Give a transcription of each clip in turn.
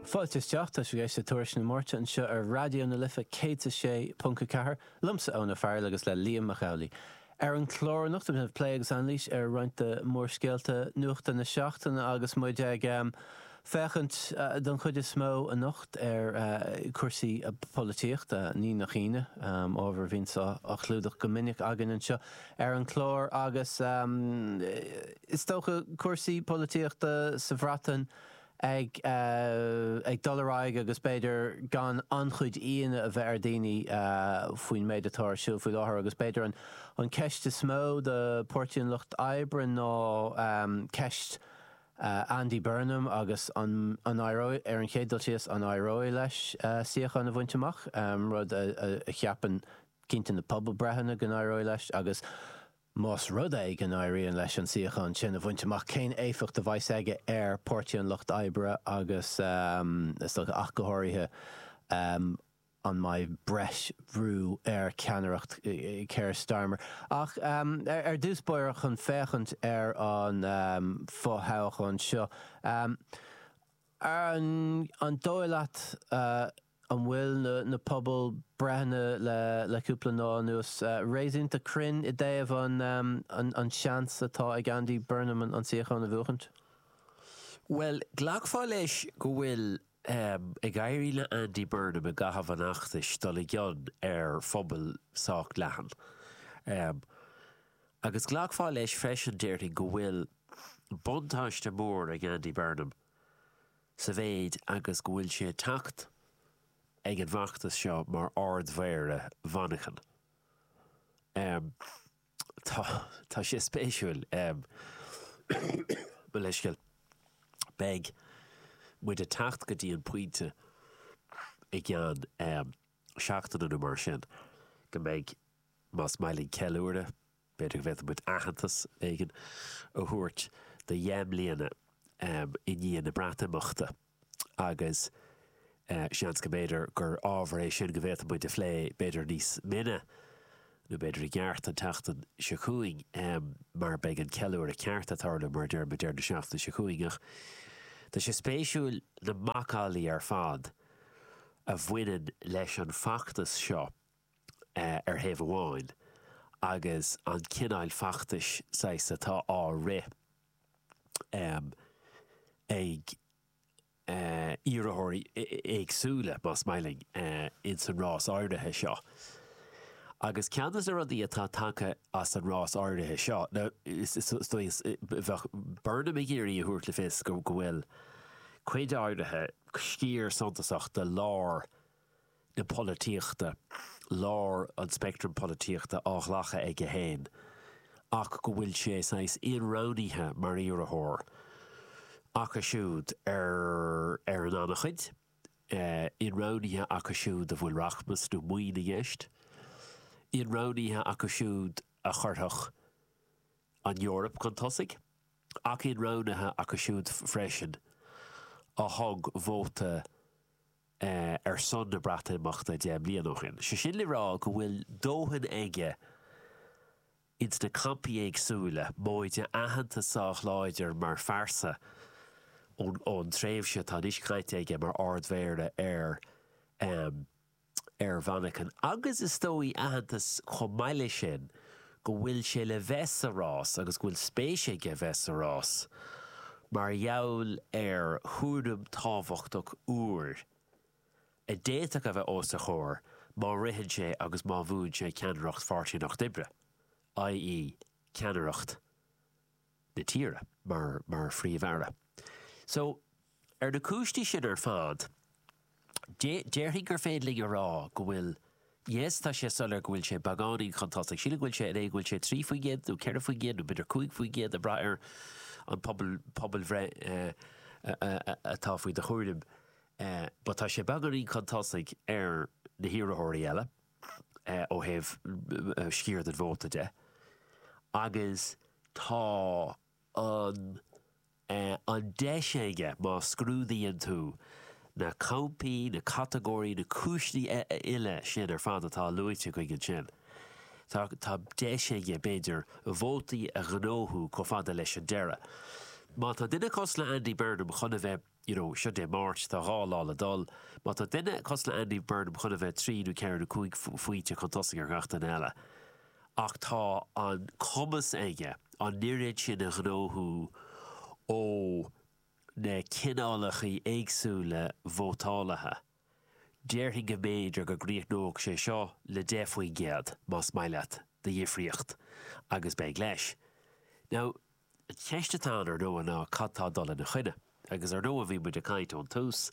Fáilte isteach, tá sibh ag éisteacht le Tuairisc na Máirte anseo ar Raidió na Life 106.4, liomsa Eoin Farrell agus le Liam Mac Amhlaigh. Ar an chlár anocht déanfaimid plé agus anailís ar roinnt de mhórscéalta nuachta na seachtaine agus muid ag féachaint don chuid is mó anocht ar chúrsaí polaitíochta, ní nach ionadh, ábhar a bhíonns á chlúdach go minic againn anseo. ar an chlár agus is dócha cúrsaí polaitíochta sa Bhreatain ag dul ar aghaidh agus b'fhéidir gan an-chuid íonadh a bheith ar dhaoine faoin méid atá ar siúl faoi láthair agus b'fhéidir an ceist is mó do Pháirtí an Lucht Oibre ná ceist Andy Burnham agus an éireoidh, ar an chéad dul síos, an éireoidh leis suíochán a bhaint amach, rud a cheapann Cinnte na pobalbhreitheanna go n-éireoidh leis agus, más rud é go n-éiríonn leis an suíochán sin a bhaint amach, cén éifeacht a bheas aige ar Páirtí an Lucht Oibre agus, is dócha, ach go háirithe, an mbeidh breis bhrú ar cheannaireacht Keir Starmer? Ach ar dtús báire chun féachaint ar an fo-thoghchán seo, an dóigh leat An bhfuil na pobalbhreitheanna le cúpla lá anuas réasúnta cruinn i dtaobh an seans atá ag Andy Burnham an suíochán a bhuachaint? Bhuel, ghlacfá leis go bhfuil ag éirí le Andy Burnham i gcaitheamh an fheachtais dul i gcion ar phobal sách leathan. Agus ghlacfá leis freisin, déarfainn, go bhfuil buntáiste mór ag Andy Burnham. Sa mhéid agus go bhfuil sé ag teacht ag an bhfeachtas seo mar Ardmhéara Mhanchain, tá, tá sé spéisiúil, mo leithscéal, beidh muid ag teacht go dtí an pointe i gceann seachtaine nó mar sin go mbeidh, más maith linn ceiliúradh, B'fhéidir go bhféadfadh muid aitheantas éigin a thabhairt do dheich mbliana i ndiaidh na Breatimeachta agus seans go mb'fhéidir gur ábhar é sin go bhféadfadh muid a phlé b'fhéidir níos mine nó b'fhéidir i gceart an tseachtain seo chugainn mar beidh an ceiliúradh ceart ag tarlú, mar a deir muid, i lár na seachtaine seo chugainn ach tá sé spéisiúil na macallaí ar fad a bhaineann leis an bhfeachtas seo. ar thaobh amháin agus an cineáil feachtais saghas atá á rith ag iarrthóirí éagsúla, más maith leat, ins an rás áirithe seo. Agus ceann de na rudaí atá tagtha as an rás áirithe seo, ná is dóigh, bheadh Burnham ag iarraidh a thabhairt le fios go bhfuil cuid áirithe, sciar suntasach de lár na polaitíochta, lár an speictrim polaitíochta á ghlacadh aige féin ach go bhfuil sé saghas inroghnaithe mar iarrthóir acu siúd ar ar an an-chuid, inroghnaithe acu siúd a bhfuil rachmas nó maoin i gceist, inroghnaithe acu siúd a chuirfeadh an Eoraip chun tosaigh ach inroghnaithe acu siúd freisin a thug vóta ar son na Breatimeachta deich mbliana ó shin. Sé sin le rá go bhfuil dóthain aige ins na campaí éagsúla, móide aitheantas sách láidir mar phearsa ón tréimhse atá anois caite aige mar Ard-Mhéara ar ar Mhanchain agus is dóigh aitheantas chomh maith leis sin go bhfuil sé le bheith sa rás agus go bhfuil spéis aige bheith sa rás mar gheall ar chúram tábhachtach úr a d'fhéadfadh a bheith os a chomhair má ritheann sé agus má bhuann sé ceannaireacht Pháirtí an Lucht Oibre, ie ceannaireacht. na tíre mar mar Phríomh-Aire. So, ar na cúinsí sin ar fad, déarfainn gur féidir linn a rá go bhfuil, yes, tá sé soiléir go bhfuil sé beagáinín chun tosaigh. Sílim go bhfuil sé in é go bhfuil sé trí faoin gcéad nó ceithre faoin gcéad nó b'fhéidir cúig faoin gcéad ag braith ar an pobal pobalbhreith atá faoi do chomhair but tá sé beagáinín chun tosaigh ar na hiarrthóirí eile. ó thaobh sciar den vóta de agus tá an an deis aige, má scrúdaíonn tú na campaí, na catagóirí, na cúiseanna uile sin ar fad atá luaite againn ansin, tá tá deis aige, b'fhéidir, vótaí a ghnóthú chomh fada leis an deireadh. Má tá duine cosúil le Andy Burnham chun a bheith. you know, seo Dé Máirt, tá dhá lá le dul. Má tá duine cosúil le Andy Burnham chun a bheith trí nó ceithre nó cúig phointe chun tosaigh ar gach duine eile. Ach tá an cumas aige an oiread sin a ghnóthú ó na cineálacha éagsúla vótálaithe, déarfainn go mb'fhéidir go gcríochnódh sé seo le 10% más maith leat de dhifríocht agus beidh leis. Now, An cheist atá ann ar ndóigh ná cad tá ag dul ina choinne? Agus ar ndóigh bhí muid ag caint ón tús,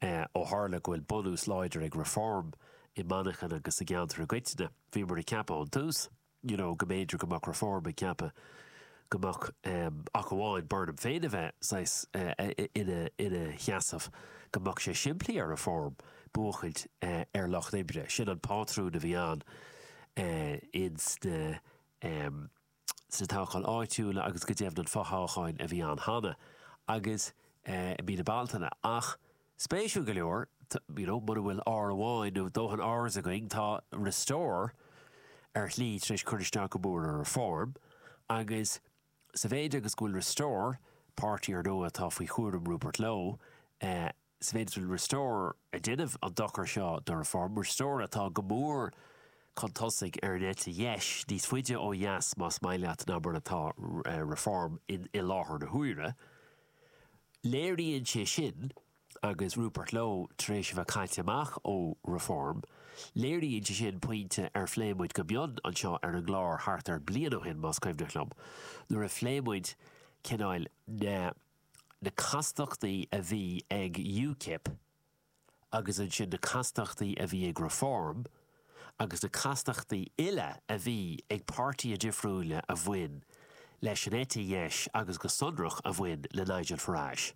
ó tharla go bhfuil bunús láidir ag Reform i Manchain agus sa gceantar i gcoitinne, bhíomar ag ceapadh ón tús you know go mb'fhéidir go mbeadh Reform ag ceapadh go mbeadh ach amháin Burnham féin a bheith saghas ina sheasamh, go mbeadh sé simplí ar Reform buachaint ar lucht oibre, sin an pátrún a bhí ann sna. sna toghcháin áitiúla agus go deimhin an fothoghchán a bhí ann cheana agus i mí na Bealtaine ach spéisiúil go leor you know mura bhfuil R amháin nó dóthain Rs againn tá Restore ar shlí tar éis cur isteach go mór ar Reform agus sa mhéid agus go bhfuil Restore, páirtí ar ndóigh atá faoi chúram Rupert Lowe, sa mhéid is go bhfuil Restore ag déanamh an dochar seo do Reform, Restore atá go mór chun tosaigh ar an eite dheis, níos faide ó dheas más maith leat ná mar atá Reform i láthair na huaire. Léiríonn sé sin, agus Rupert Lowe tar éis a bheith caite amach ó Reform, léiríonn sé sin pointe ar phlé muid go mion anseo ar an gclár thart ar bhliain ó shin, más cuimhneach liom, nuair a phléigh muid cineál na. na castachtaí a bhí ag UKIP agus ansin na castachtaí a bhí ag Reform agus na castachtaí uile a bhí ag páirtithe difriúila a bhain leis an eite dheis agus go sonrach a bhain le Nigel Farage.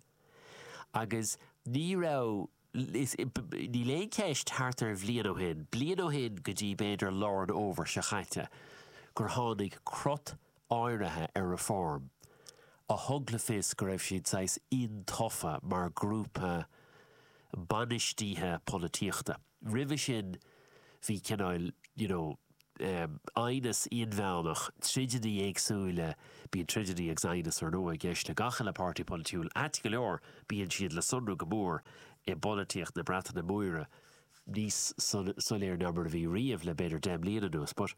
Agus ní raibh. Níl aon cheist, thart ar bhliain ó shin, bliain ó shin go dtí b'fhéidir lár an fhómhair seo caite, gur tháinig crot áirithe ar Reform a thug le fios go raibh siad saghas intofa mar ghrúpa bainistíthe polaitíochta. Roimhe sin bhí cineál, you know, aighneas inmheánach, troideannaí éagsúile, bíonn troideannaí agus aighneas ar ndóigh i gceist le gach uile pháirtí polaitiúil, ait go leor bíonn siad le sonrú go mór i bpolaitíocht na Breataine Móire, níos soiléire ná mar a bhí riamh le b'fhéidir deich mbliana anuas but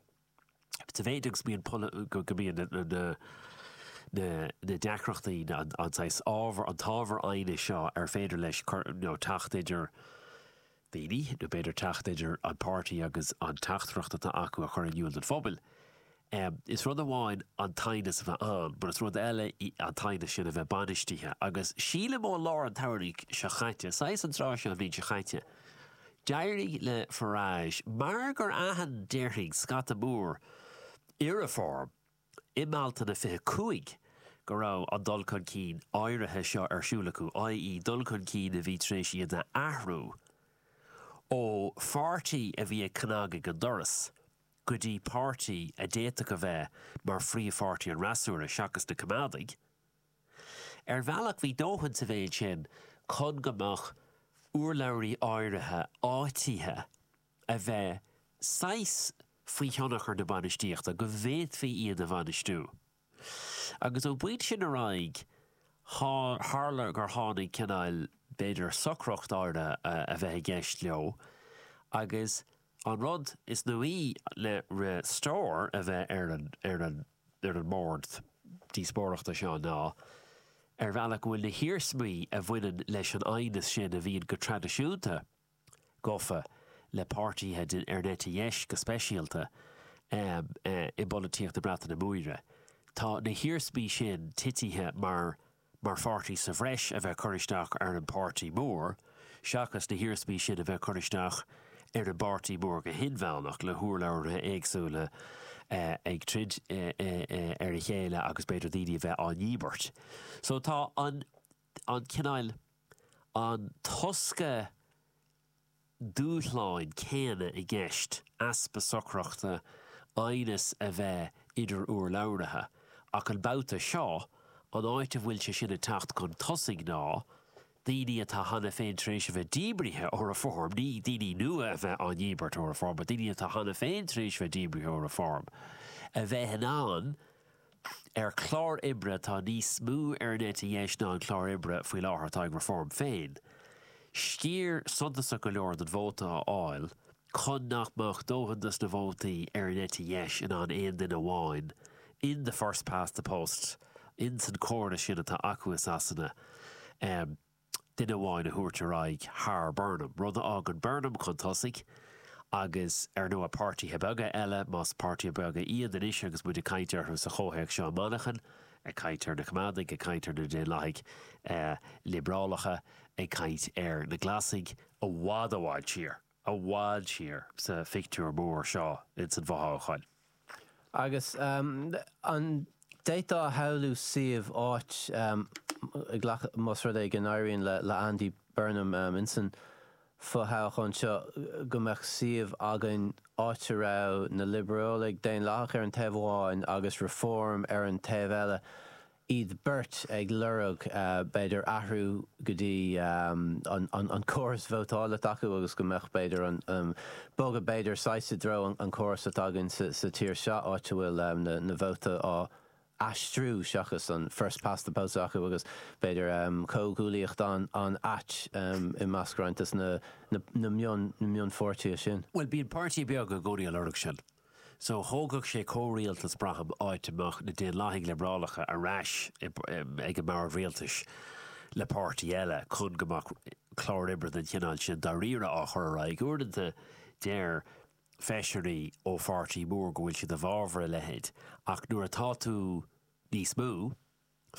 sa mhéid agus go mbíonn na deacrachtaí, an saghas ábhar, an t-ábhar aighnis seo ar féidir leis cur, you know, teacht idir. daoine, nó b'fhéidir teacht idir an páirtí agus an teachtaireacht atá acu a chur in iúl don phobal. Is rud amháin an t-aighneas a bheith ann, mar is rud eile an t-aighneas sin a bheith bainistithe, agus sílim ó lár an tsamhraidh seo caite, saghas an tráth seo an bhliain seo caite, d'éirigh le Farage, mar gur aithin, déarfainn, scata mór i Reform, i mBealtaine 25 go raibh an dul chun cinn áirithe seo ar siúl acu, i.e. dul chun cinn a bhí tar éis iad a athrú ó pháirtí a bhí ag cnag ag an doras go dtí páirtí a d'fhéadfadh a bheith mar phríomhpháirtí an fhreasúra, seachas na Coimeádaigh. Ar bhealach bhí dóthain sa mhéid sin chun go mbeadh urlabhraithe áirithe áitithe. a bheith saghas faoi thionchar na bainistíochta go bhféadfaí iad a bhainistiú. Agus ón bpointe sin ar aghaidh tharla gur tháinig cineál, b'fhéidir, socracht áirithe a bheith i gceist leo agus an rud is nuaí le Restore a bheith ar an, ar an, ar an mbord díospóireachta seo ná ar bhealach go bhfuil na hiarsmaí a bhaineann leis an aighneas sin a bhíonn go traidisiúnta gafa le páirtíthe den, ar an eite dheis go speisialta, i bpolaitíocht na Breataine Móire. Tá na hiarsmaí sin titithe mar mar pháirtí sa bhreis a bheith cur isteach ar an bpáirtí mór seachas na hiarsmaí sin a bheith cur isteach ar an bpáirtí mór go hinmheánach le hurlabhraithe éagsúla ag troid ar a chéile agus b'fhéidir daoine a bheith á ndíbirt. So tá an. an cineál, an tosca dúshláin céanna i gceist, easpa socrachta, aighneas a bheith idir urlabhraithe. Ach an babhta seo, an áit a bhfuil sé sin ag teacht chun tosaigh ná daoine atá cheana féin tar éis a bheith díbrithe ó Reform, ní daoine nua a bheith á ndíbirt ó Reform, but daoine atá cheana féin tar éis a bheith díbrithe ó Reform, a bheith in ann ar chlár oibre atá níos mó ar an eite dheis ná an clár oibre faoi láthair atá ag Reform féin, sciar suntasach go leor den vóta a fháil chun nach mbeadh dóthain de na vótaí ar an eite dheis in ann aon duine amháin in the first past the post in sa chóras sin atá acu i Sasana a duine amháin a thabhairt ar aghaidh thar Burnham, rud a fhágann Burnham chun tosaigh agus, ar ndóigh, páirtithe beaga eile, más páirtithe beaga iad anois agus muid ag caint orthu sa chomhthéacs seo i Manchain, ag caint ar na Coimeádaigh, ag caint ar na Daonlathaigh Liobrálacha, ag caint ar na Glasaigh, i bhfad i bhfad siar. i bhfad siar sa phictiúr mór seo ins an bhfothoghchán. Agus an d'fhéadfá a shamhlú suíomh, áit, a ghlacadh, más rud é go n-éiríonn le Andy Burnham ins an bhfothoghchán seo, go mbeadh suíomh againn, áit a raibh na Liobrálaigh Dhaonlathacha ar an taobh amháin agus Reform ar an taobh eile. iad beirt ag lorg b'fhéidir athrú go dtí an córas vótála s'acu agus go mbeadh b'fhéidir an, bogadh b'fhéidir saghas i dtreo an córas atá againn sa tír seo áit a bhfuil na vótaí á aistriú seachas an first past the post acu agus b'fhéidir comhghuaillíocht an-ait i measc roinnt des na mionpháirtithe sin. Bhuel bíonn páirtí beag ag iarraidh a lorg sin. So, thógfadh sé comhrialtas, braithim, áit a mbeadh na Daonlathaigh Liobrálacha ar ais ag an mbord rialtais le páirtí eile, chun go mbeadh clár oibre den chineál sin dáiríre á chur ar aghaidh. Uaireanta, deir feisirí ó pháirtí mór go bhfuil siad i bhfabhar a leithéid, ach nuair atá tú níos mó,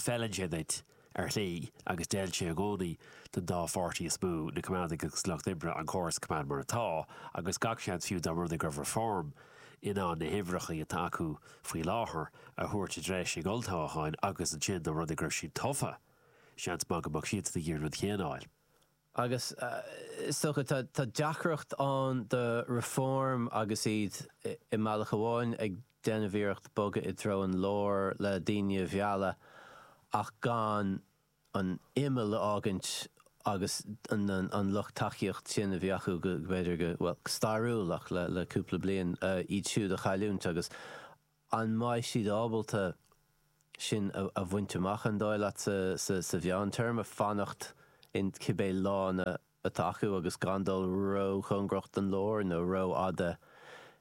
Feileann sé duit, ar shlí, agus d'fheil sé i gcónaí don dá pháirtí is mó, na Coimeádaigh agus Lucht Oibre, an córas a choimeád mar atá, agus gach seans fiú dá mba rud é go raibh Reform in ann na huimhreacha atá acu faoi láthair a thabhairt i dtreis ag olltoghcháin, agus ansin, dá mba rud é go raibh siad tofa, seans maith go mbeadh siadsan ag iarraidh an rud céanna a dhéanamh. Agus is dócha, tá deacracht ann do Reform agus iad i mbealach amháin ag déanamh iarracht bogadh i dtreo an lár le daoine a mhealladh ach gan an imeall a fhágaint agus an lucht tacaíocht sin a bhí acu go, b'fhéidir go, bhuel, go stairiúil ach le cúpla bliain, iad siúd a chailliúint agus. An mbeidh siad ábalta sin a bhaint amach, an dóigh leat, sa mheántéarma, fanacht in cibé lána atá acu agus gan dul róchóngarach don lár nó rófhada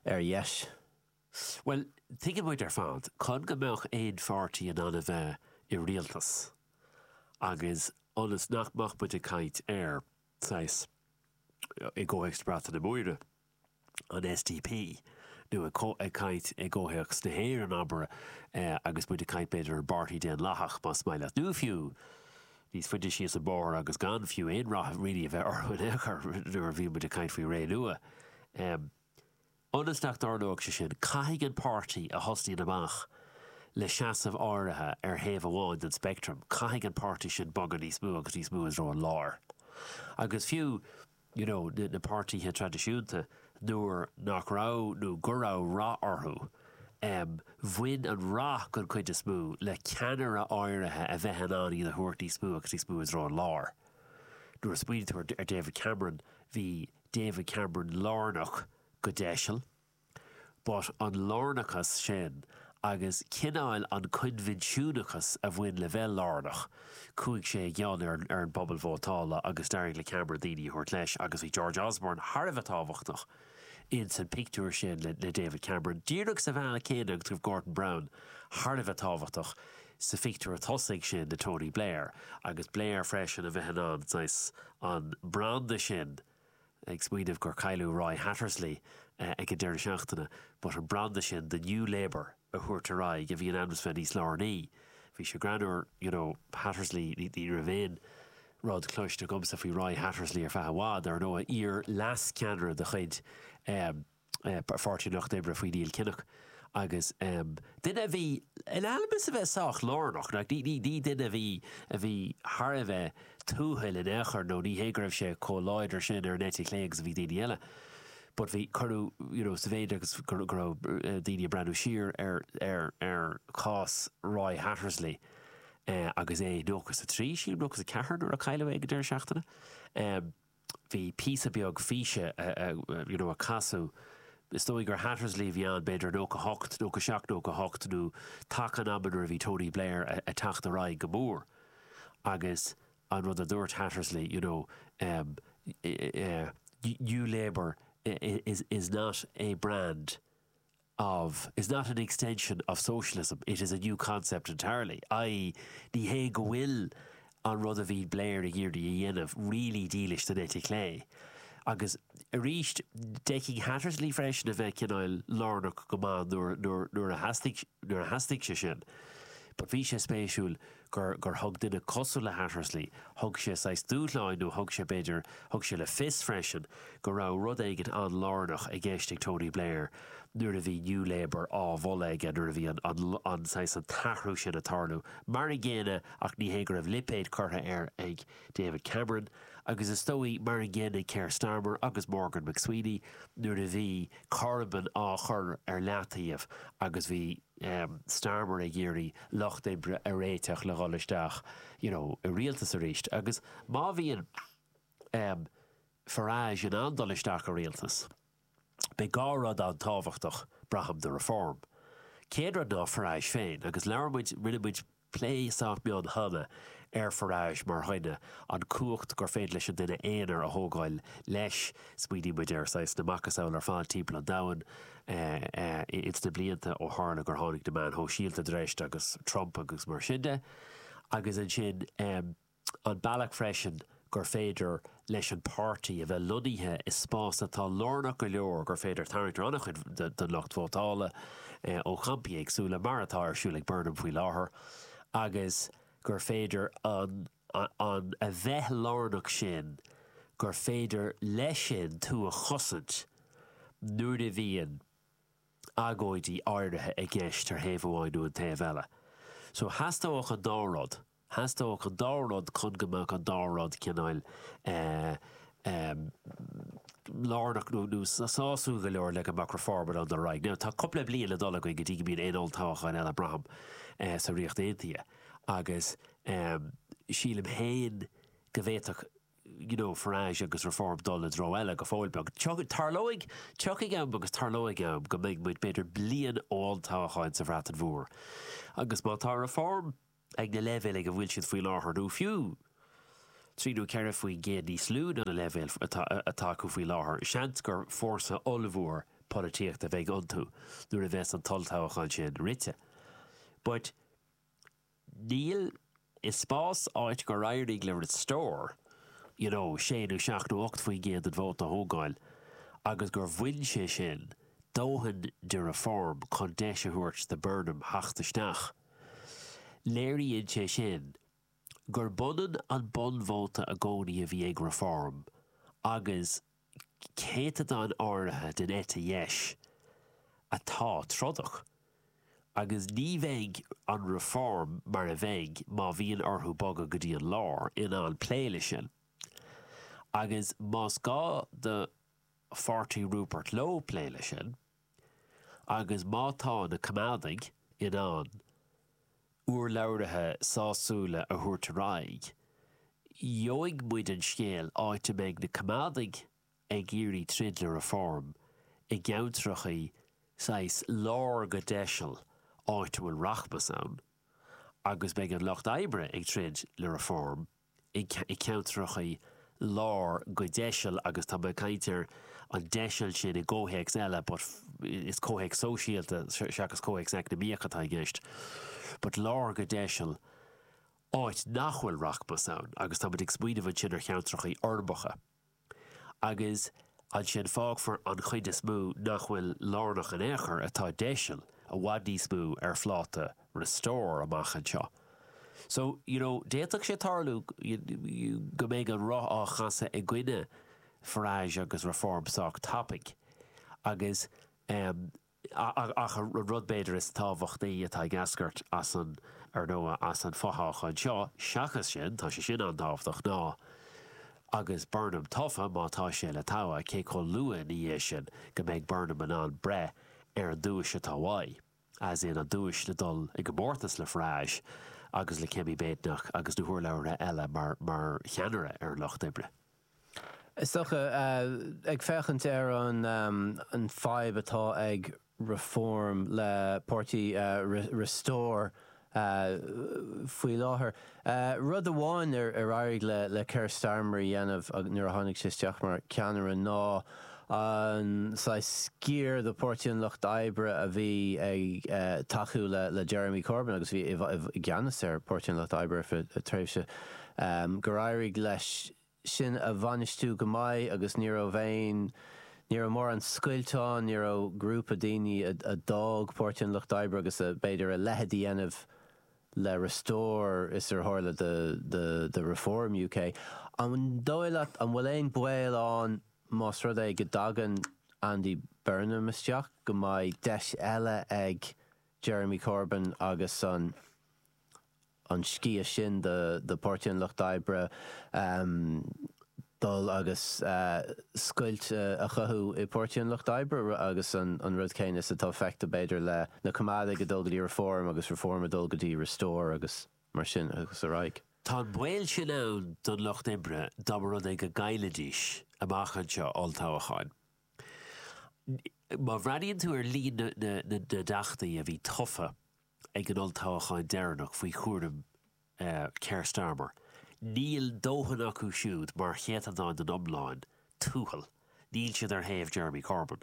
ar dheis? Bhuel, tuigeann muid ar fad, chun go mbeadh aon pháirtí in ann a bheith i rialtas, agus ionas nach mbeadh muid ag caint ar, saghas, i gcomhthéacs na Breataine Móire, an SDP, nó ag caint i gcomhthéacs na hÉireann, abair, agus muid ag caint b'fhéidir ar an bPáirtí Daonlathach, más maith leat, nó fiú níos faide síos an bóthar agus gan fiú aon rath really a bheith orthu in aon chor, nuair a bhíonn muid ag caint faoi Renua. Ionas nach dtarlóidh sé sin, caithfidh an páirtí a thosnaíonn amach le seasamh áirithe ar thaobh amháin den speictream, caithfidh an páirtí sin bogadh níos mó agus níos mó i dtreo an láir. Agus fiú. you know, na páirtithe traidisiúnta, nuair nach raibh, nuair a raibh rath orthu, em, bhain an rath, den chuid is mó, le ceannaire áirithe a bheith in ann iad a thabhairt níos mó agus níos mó i dtreo an láir. Nuair a smaoiníonn tú ar, ar David Cameron, bhí David Cameron lárnach, go deiseal, But an lárnachas sin agus cineáil an coinbhinsiúnachas a bhain le bheith lárnach, chuaigh sé i gcion ar an bpobal vótála agus d'éirigh le Cameron daoine a thabhairt leis agus bhí George Osborne thar a bheith tábhachtach ins an pictiúr sin le David Cameron, díreach sa bhealach céanna agus go raibh Gordon Brown thar a bheith tábhachtach sa phictiúr tosaigh sin le Tony Blair agus Blair freisin a bheith in ann, saghas, an branda sin. ag smaoineamh gur cailleadh Roy Hattersley ag an deireadh seachtaine, but an branda sin de New Labour a thabhairt ar aghaidh a bhí in ainm is a bheith níos lárnaí. Bhí sé greannúr, you know, Hattersley, ní raibh aon rud cloiste agamsa faoi Roy Hattersley ar feadh i bhfad, ar ndóigh, iar-leas-ceannaire de chuid eh, Pháirtí an Lucht Oibre faoi Neil Kinnock agus duine a bhí in ainm is a bheith sách lárnach, ní duine a bhí a bhí thar a bheith tuathail in aon chor nó ní hé go raibh sé chomh láidir sin ar an eite chlé agus a bhí daoine eile but bhí, cuireadh you know sa mhéid agus go raibh daoine ag breathnú siar ar ar chás Roy Hattersley agus é nócha is a trí, sílim, nócha is a ceathair nuair a cailleadh é ag an deireadh seachtaine. Bhí píosa beag físe you know a casadh. Is dóigh gur Hattersley a bhí ann, b'fhéidir 98, 97, 98 nó taca an ama nuair a bhí Tony Blair a teacht ar aghaidh go mór agus an rud a dúirt Hattersley you know ehm eh eh eh New Labour is is not a brand of, is not an extension of socialism, it is a new concept entirely', i.e. ní hé go bhfuil an rud a bhí Blair ag iarraidh a dhéanamh really dílis don eite chlé. Agus arís, d'fhéadfadh Hattersley freisin a bheith cineál lárnach go maith nuair a theastaigh sé sin. But bhí sé spéisiúil. gur, gur thug duine cosúil le Hattersley, thug sé saghas dúshláin nó thug sé, b'fhéidir, thug sé le fios freisin go raibh rud éigin an-lárnach i gceist ag Tony Blair nuair a bhí New Labour á mholadh aige, nuair a bhí an, an, an, saghas, an t-athrú sin ag tarlú. Mar an gcéanna, ach ní hé go raibh lipéid curtha air ag David Cameron, agus is dóigh, mar an gcéanna ag Keir Starmer agus Morgan McSweeney nuair a bhí Corbyn á chur ar leataobh agus bhí, Starmer ag iarraidh Lucht Oibre a réiteach le dhul isteach you know i rialtas arís agus má bhíonn Farage in ann dul isteach i rialtas beidh dhá rud an-tábhachtach braithim do Reform. Chéad rud ná Farage féin agus labhair muid, rinne muid, plé sách mion cheana ar Farage mar dhuine, an cumhacht gur féidir leis an duine aonair a thógáil leis, smaoinigh muid ar saghas na macasamhail ar fad timpeall an domhain ins na blianta ó tharla gur tháinig na meáin shóisialta i dtreis agus Trump agus mar sin de agus ansin eh. an bealach freisin gur féidir leis an bpáirtí a bheith lonnaithe i spás atá lárnach go leor gur féidir tarraingt ar an-chuid den lucht vótála ó champaí éagsúla, mar atá ar siúl ag Burnham faoi láthair, agus gur féidir an an a bheith lárnach sin gur féidir leis sin tú a chosaint nuair a bhíonn agóidí áirithe i gceist ar thaobh amháin nó an taobh eile. So theastódh an dá rud. Theastódh an dá rud chun go mbeadh an dá rud cineál lárnach nó sásúil go leor le go mbeadh Reform in ann dul ar aghaidh. Now, tá cúpla bliain le dul againn go dtí go mbíonn aon olltoghchán eile, braithim, sa Ríocht Aontaithe agus sílim féin go bhféadfadh, you know, Farage agus Reform dul i dtreo eile go fóill beag. Tarlóidh, tiocfaidh am agus tarlóidh am go mbeidh muid b'fhéidir bliain ó olltoghchán sa Bhreatain Mhór agus má tá Reform, ag na leibhéil ag a bhfuil siad faoi láthair, nó fiú trí nó ceithre faoin gcéad níos lú ná na leibhéil atá acu faoi láthair, seans gur fórsa ollmhór polaitíochta a bheidh iontu nuair a bheas an t-olltoghchán sin rite. But táimid i spás áit gur éirigh le Restore, you know, sé nó seacht nó ocht faoin gcéad den vóta a thógáil agus gur bhain sé sin dóthain de Reform chun deis a thabhairt do Burnham teacht isteach. Léiríonn sé sin gurb ionann an bunvóta i gcónaí a bhí ag Reform agus céatadán áirithe den eite dheis atá trodach, agus ní bheidh an Reform mar a bheidh má bhíonn orthu bogadh go dtí an lár, in ann plé leis sin. Agus más gá do pháirtí Rupert Lowe plé leis sin, Agus má tá na coimeádaigh in ann urlabhraithe sásúla a thabhairt ar aghaidh, gheobhaidh muid an scéal áit a mbeidh na coimeádaigh ag iarraidh troid le Reform i gceantracha saghas lár go deiseal áit a bhfuil rachmas ann, agus beidh an lucht oibre ag troid le Reform i gceantracha lár go deiseal agus tá mé ag caint ar an deiseal sin i gcomhthéacs eile but is comhthéacs sóisialta seachas comhthéacs eacnamaíoch atá i gceist but lár go deiseal áit nach bhfuil rachmas ann agus táimid ag smaoineamh ansin ar cheantracha urbacha. Agus ansin fágfar an chuid is mó nach bhfuil lárnach in aon chor, atá deiseal, i bhfad níos mó, ar phláta Restore amach anseo. So, you know, d'fhéadfadh sé tarlú go mbeidh an roth á chasadh i gcoinne Farage agus Reform sách tapaigh agus, eh, Ach an rud b'fhéidir is tábhachtaí atá ag eascairt as an, ar ndóigh, as an fothoghchán seo, seachas sin, tá sé sin an-tábhachtach, ná, agus Burnham tofa, má tá sé le togha, cé chomh luath ina dhiaidh sin go mbeidh Burnham in ann breith ar an duais atá uaidh, as in an duais le dul i gcomórtas le Farage agus le Kemi Badenoch agus na hurlabhraithe eile mar cheannaire ar an Lucht Oibre. Is dócha, ag féachaint ar an fadhb atá ag Reform le páirtí Restore faoi láthair, rud amháin ar éirigh le Keir Starmer a dhéanamh nuair a tháinig sé isteach mar cheannaire ná an saghas sciar de Pháirtí an Lucht Oibre a bhí ag tacú le Jeremy Corbyn agus a bhí i gceannas ar Pháirtí an Lucht Oibre ar feadh tréimhse gur éirigh leis sin a bhainistiú go maith agus ní raibh aon, ní raibh mórán scoilteanna, ní raibh grúpa daoine a d'fhág Páirtí an Lucht Oibre agus a, b'fhéidir, a leithéid a dhéanamh le Restore is ar tharla do Reform UK. An dóigh leat, an bhfuil aon baol ann más rud é go dtagann Andy Burnham isteach go mbeidh deis eile ag Jeremy Corbyn agus an, an sciar sin de Páirtí an Lucht Oibre dul agus scoilt a chothú i bPáirtí an Lucht Oibre agus an rud céanna is atá feicthe b'fhéidir le na Coimeádaigh a dul go dtí Reform agus Reform a dul go dtí Restore agus mar sin agus ar aghaidh. Tá an baol sin ann don Lucht Oibre dá mba rud é go gcaillfidís amach anseo olltoghchán. Má bhreathnaíonn tú ar líon na dteachtaí a bhí tofa ag an olltoghchán deireanach faoi chúram Keir Starmer. Níl dóthain acu siúd mar chéatadán den iomlán, a Thuathail. Níl siad ar thaobh Jeremy Corbyn.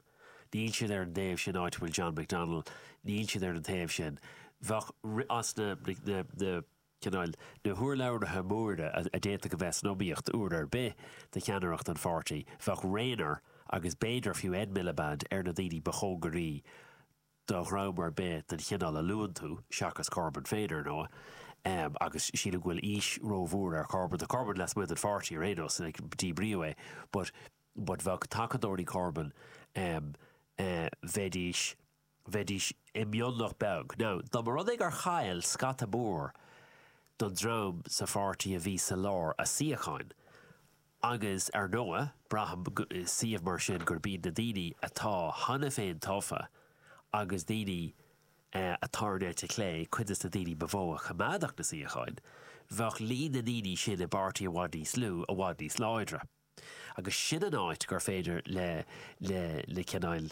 Níl siad ar an taobh sin áit a bhfuil John McDonnell. Níl siad ar an taobh sin. Bhfuil a fhios agat, na, na, cineál, na hurlabhraithe móra a d'fhéadfadh a bheith san iomaíocht uair ar bith do cheannaireacht an pháirtí, bheadh Rayner agus b'fhéidir fiú Ed Miliband ar na daoine ba chóngaraí do dhream ar bith den chineál a luann tú, seachas Corbyn féin, ar ndóigh, agus sílim go bhfuil aois rómhór ar Chorbyn. Tá Corbyn lasmuigh den pháirtí ar aon nós, díbríodh é, but but bheadh tacadóirí Corbyn, bheidís, bheidís i mionlach beag. Now, dá mba rud é gur chaill scata mór den dream sa pháirtí a bhí sa lár a suíocháin, Agus ar ndóigh, braithim i suíomh mar sin gurb iad na daoine atá cheana féin tofa agus daoine atá ar an eite chlé cuid de na daoine ba mhó a choimeádfadh na suíocháin. Bheadh líon na ndaoine sin i bpáirtí i bhfad níos lú, i bhfad níos láidre. Agus sin an áit gur féidir le, le, le cineál,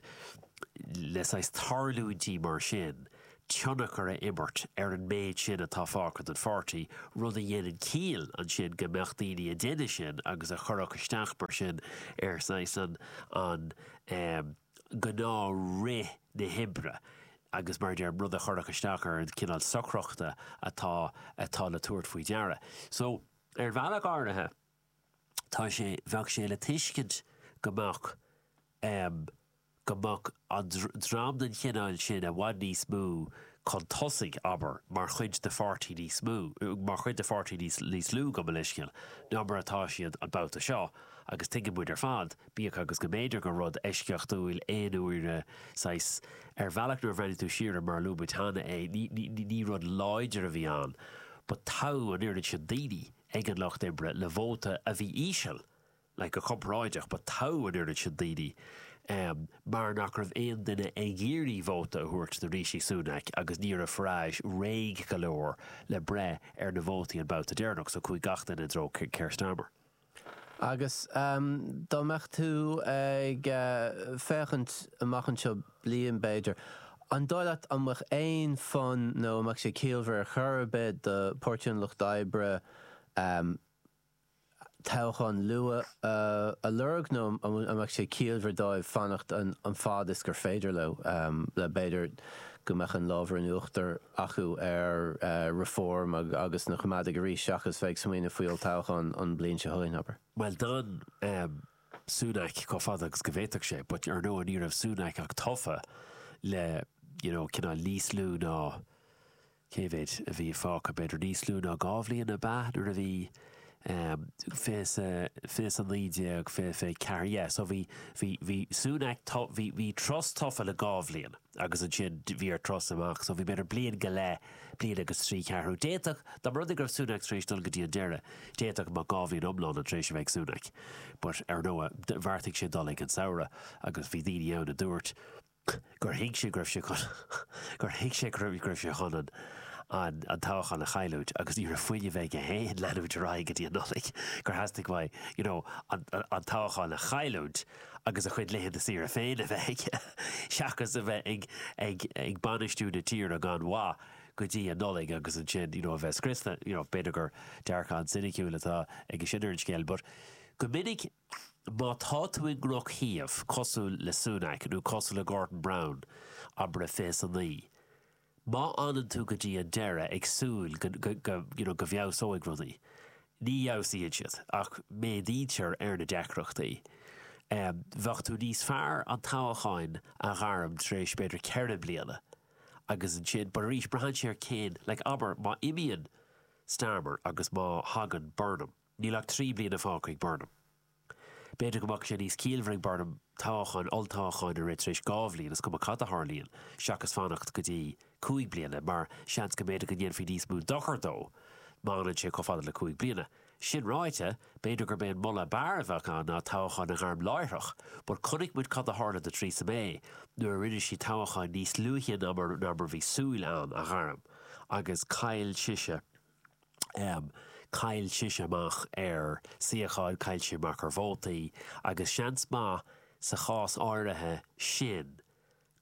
le saghas tarlúintí mar sin tionchar a imirt ar an méid sin atá fágtha den pháirtí, rud a dhéanann ciall ansin go mbeadh daoine a deineadh sin agus a chuirfeadh isteach mar sin ar saghas an ghnáth rith na hoibre agus mar a deirim, rud a chuirfeadh isteach ar an cineál socrachta atá atá le tabhairt faoi deara. So, ar bhealach áirithe, tá sé, bheadh sé le tuiscint go mbeadh, go mbeadh an dream den chineál sin i bhfad níos mó chun tosaigh, abair, mar chuid de pháirtí níos mó, mar chuid de pháirtí níos lú, gabh mo leithscéal, ná mar atá siad an babhta seo, agus tuigeann muid ar fad, bíodh agus go mb'fhéidir gur rud eisceachtúil, aonuaire, saghas, ar bhealach nuair a bhreathnaigh tú siar air, mar a luaigh muid cheana é, ní, ní, ní rud láidir a bhí ann, but toghadh an oiread sin daoine ag an Lucht Oibre le vóta a bhí íseal, like go comparáideach, but toghadh an oiread sin daoine mar nach raibh aon duine ag iarraidh vóta a thabhairt do Rishi Sunak agus ní raibh Farage réidh go leor le breith ar na vótaí an babhta deireanach, so chuaigh gach duine i dtreo Keir Starmer. Agus dá mbeadh tú ag féachaint amach anseo bliain, b'fhéidir, an dóigh leat an mbeadh aon fonn nó an mbeadh sé ciallmhar ar chor ar bith do Páirtí an Lucht Oibre toghchán luath a lorg nó an mbeadh sé ciallmhar dóibh fanacht an fad is gur féidir leo, le b'fhéidir go mbeadh an lámh in uachtar acu ar Reform agus na Coimeádaigh arís seachas bheith ag smaoineamh faoi olltoghchán an bhliain seo chugainn, abair. Bhuel, d'fhan Sunak chomh fada agus go bhféadfadh sé, but ar ndóigh ní raibh Sunak ach tofa le, you know, cineál níos lú ná, Cé mhéid a bhí fágtha? B'fhéidir níos lú ná dhá bhliain ab ea? Nuair a bhí ehm. fiche is a, fiche is a naoi déag, fiche, fiche ceathair yeah so bhí. bhí. bhí Sunak to bhí. bhí Truss tofa le dhá bhliain agus ansin bhí ar Truss amach so bhí b'fhéidir bliain go leith, bliain agus trí cheathrú. D'fhéadfadh, dá mba rud é go raibh Sunak tar éis dul go dtí an deireadh, d'fhéadfadh go mbeadh dhá bhliain iomlána tar éis a bheith ag Sunak but ar ndóigh bheartaigh sé dul ag an samhradh agus bhí daoine ann a dúirt, gur thuig sé go raibh sé chun gur thuig sé go raibh go raibh sé chun an an an toghchán a chailliúint agus ní raibh fuinneamh aige chun leanúint ar aghaidh go dtí an Nollaig, gur theastaigh uaidh you know an an toghchán a chailliúint agus a chuid laethanta saoire féin a bheith aige seachas a bheith ag ag ag bainistiú na tíre gan mhaith go dtí an Nollaig agus ansin you know a bheith scriosta, you know b'fhéidir gur dearcadh an-soiniciúil atá aige sin ar an scéal but go minic Má tá tú i ndrochshuíomh, cosúil le Sunak nó cosúil le Gordon Brown, abair fiche is a naoi. Má fhanann tú go dtí an deireadh ag súil you know go bhfeabhsóidh rudaí, ní fheabhsaíonn siad ach méadaítear ar na deacrachtaí. Bheadh tú níos fearr an toghcháin a ghairm tar éis b'fhéidir ceithre bliana agus ansin but arís braitheann sé ar cén like abair má imíonn Starmer agus má thagann Burnham, Níl ach trí bliana fágtha ag Burnham. B'fhéidir go mbeadh sé níos ciallmhaire ag Burnham toghcháin, olltoghcháin a rith tar éis dhá bhliain, is cuma cad a tharlaíonn, seachas fanacht go dtí cúig bliana, mar seans go mb'fhéidir go ndéanfaí níos mó dochair dó má fhanann sé chomh fada le cúig bliana. Sin ráite, b'fhéidir gurb é an moladh ab fhearr a bheadh ann ná toghcháin a ghairm láithreach, but chonaic muid cad a tharla do Theresa May nuair a rinne sí toghcháin níos luaithe ná mar a bhí súil ann a ghairm, agus chaill sise. Chaill sise amach ar suíocháin, chaill sí amach ar vótaí agus seans maith sa chás áirithe sin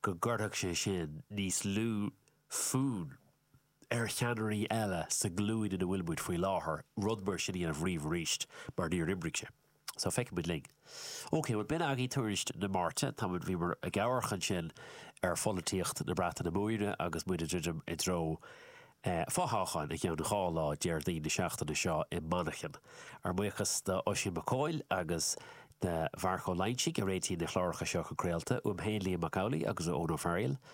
go gcuirfeadh sé sin níos lú fonn ar cheannairí eile sa nglúin ina bhfuil muid faoi láthair rud mar sin a dhéanamh riamh arís mar níor oibrigh sé. So, feicfidh muid linn. OK, bhuel, b'in agaibh tuairisc na Máirte. Tá muid, bhíomar ag amharc ansin ar pholaitíocht na Breataine Móire agus muid ag druidim i dtreo fothoghcháin i gceann dhá lá, Déardaoin na seachtaine seo i Manchain. Ár mbuíochas do Oisín Mac Cóil agus do Mharc Ó Loingsigh a réitíonn na cláracha seo chun craolta, uaim féin Liam Mac Amhlaigh agus ó Eoin Ó Fearghail.